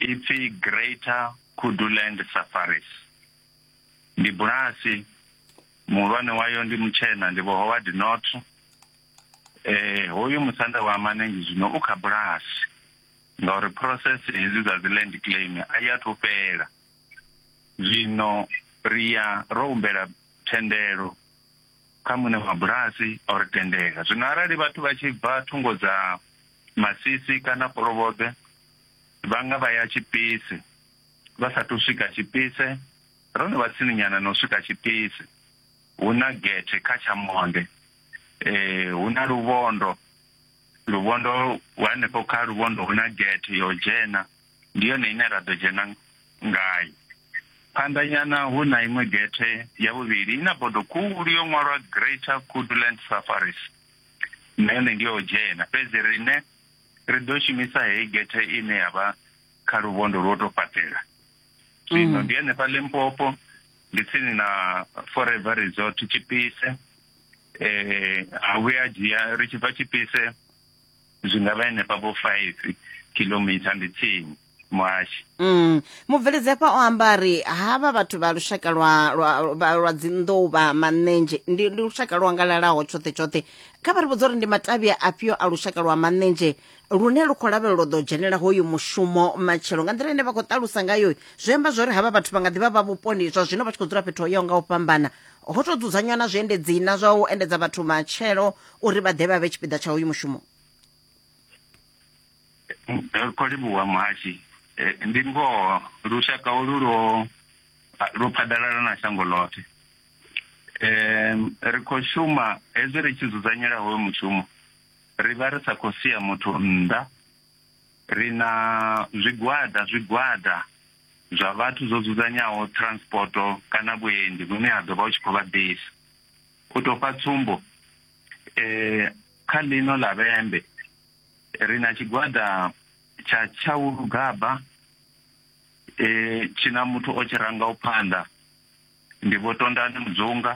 Ipfi Greater Kuduland Safaris ndi bulasi muhulwane wayo ndi mutshena ndi vho Howard North eh hoyu musanda wa Manengi zwino u kha bulasi ngauri process hedzi dza dzi land claim a ya thu fhela zwino ri ya ro humbela thendelo kha muṋe wa bulasi o ri tendela zwino arali vhathu vha tshi bva thungo dza masisi kana kolobobe Vha nga vha ya tshipisi vha sa athu swika tshipise. Ro no vha tsininyana na u swika tshipisi. Hu na gethe kha tsha monde. Hu na luvhondo. Luvhondo hanefho kha luvhondo hu na gethe ya u dzhena. Ndi yone ine ra ḓo dzhena ngayo. Phanḓa nyana hu na iṅwe gethe ya vhuvhili i na bodo khulu yo ṅwalwa Greater Kudu Land Safaris. Na yone ndi ya u dzhena fhedzi riṋe ri ḓo shumisa heyi gethe ine ya vha kha luvhondo lwo tou fhaṱela zwino mm. ndi henefha limpopo ndi tsini na forever resort tshipise eh a vhuya dzhia ri tshi bva tshipise zwi nga vha henefha vho five kilometer ndi tsini muhashi Mm. mubveledzekwa o amba ri havha vhathu vha lushaka lwa lwa vha- lwa dzinḓou vha manenzhe ndi ndi lushaka lwo angalalaho tshoṱhe tshoṱhe kha vha ri vhudza uri ndi matavhi afhio a lushaka lwa manenzhe lune lu khou lavhelelwa u ḓo dzhenela hoyu mushumo matshelo nga nḓila ine vha khou ṱalusa ngayo zwi amba zwori havha vhathu vha nga ḓivha vha vhuponi zwa zwino vha tshi khou dzula fhethu ho yaho nga u fhambana ho tou dzudzanywa na zwiendedzi na zwa u endedza vhathu matshelo uri vha ḓe vha vhe tshipiḓa tsha hoyu mushumo Ro livhuwa muhashi Eh, ndi ngoho lushaka olu lwo lwo phaḓalala na shango ḽoṱhe Em, ri khou shuma hezwi ri tshi dzudzanyela hoyo mushumo ri vha ri sa khou sia muthu nnḓa ri na zwigwada zwigwada zwa vhathu zwo dzudzanyaho transporto kana vhuendi vhune ha ḓo vha u tshi khou vha ḓisa u tou fha tsumbo eh, kha ḽino ḽa vhembe ri na tshigwada tsha tshaulugaba e tshi na muthu o tshi rangaho phanḓa ndi vho tondani mudzunga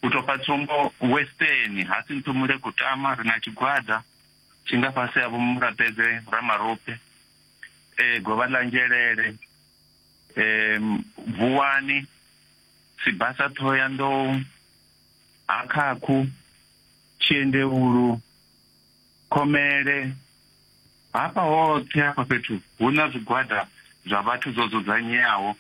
u tou pfa tsumbo western ha si nthumule kutama ri na tshigwada tshi nga fhasi ha vhomurapedze ramarope e govha ḽa nzhelele e vuwani sibasa thoya nḓou ha khakhu tshiendevhulu Khomele. Hafha hoṱhe hafha fhethu hu na zwigwada zwa vhathu zwo dzudzanyeaho,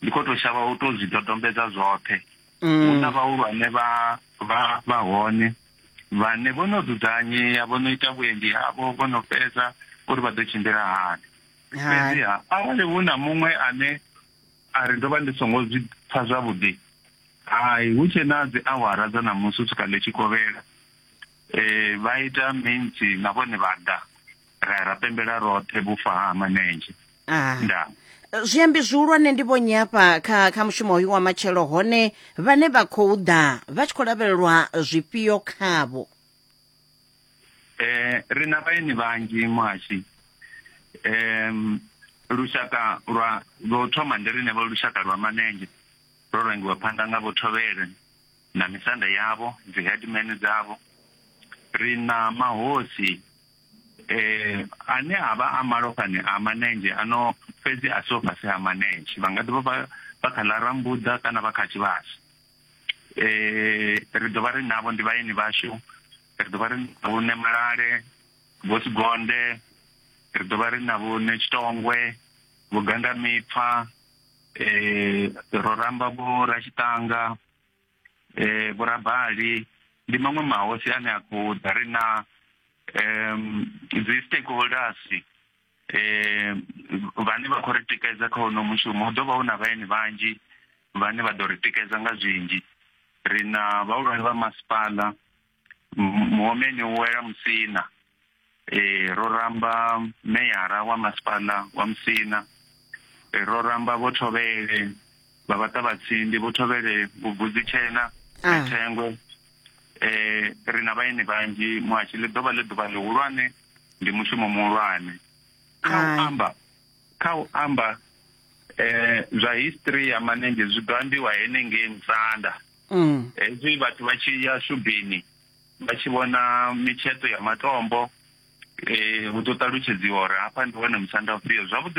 ndi khou tou shavha u tou zwi dodombedza zwoṱhe. Hu na mm. vhahulwane vha vha vha hone vhane vho no dzudzanyea vho no ita vhuendi havho vho no fhedza uri vha ḓo tshimbila hani fhedziha arali hu na muṅwe ane a ri ndo vha ndi songo zwi pfa zwavhuḓi hai hu tshe na dzi awara dza ṋamusi u swika ḽi tshi kovhela Ee, vha ita mintsi na vhone vha ḓa ra ya ra pembela roṱhe vhufa ha manenzhe ah. nda eh, zwiambi zwihulwane ndi vhonyi hafha kha kha mushumo hoyu wa matshelo hone vhane vha khou ḓa vha tshi khou lavhelelwa zwifhio khavho eh ri na vhaeni vhanzhi muhashi em lushaka lwa lwo thoma ndi rine vho lushaka lwa manenzhe ro rangiwa phanḓa nga vho thovhele na misanda yavho dzi headman dzavho ri na mahosi eh ane avha a malofhani a manenzhe ano fhedzi a so fhasi ha manenzhe vha nga ḓivha vha vha kha ḽa rambuḓa kana vha kha tshivhasi eh ri ḓo vha ri navho ndi vhaeni vhashu ri ḓo vha ri navho ne malale vho sigonde ri ḓo vha ri navho ne tshitongwe vho ganda mipfa eh ro ramba vho ra tshitanga eh vhurabali ndi maṅwe mahosi ane a khou ḓa ri na um dzi stakeholders eh vhane vha khou ri tikedza kha hono mushumo hu ḓovha hu na vhaeni vhanzhi vhane vha ḓo ri tikedza nga zwinzhi ri na vhahulwane vha masipala muomeni u wela musina eh ro ramba meyara wa masipala wa musina eh, ro ramba vho thovhele vha vhaṱa vhatsindi vho thovhele vhubvudzi tshena ah. na thengwe eh ri na vhaeni vhanzhi muhashi ḽi ḓovha ḽi ḓuvha ḽihulwane ndi mushumo muhulwane kha u amba kha u amba eh zwa history ya manenzhe zwi ḓo ambiwa henengei musanda Mm. hezwi vhathu vha tshi ya shubini vha tshi vhona mitsheṱo ya matombo eh hu ḓo ṱalutshedziwa uri hafha ndi hone musanda ufhio zwavhuḓi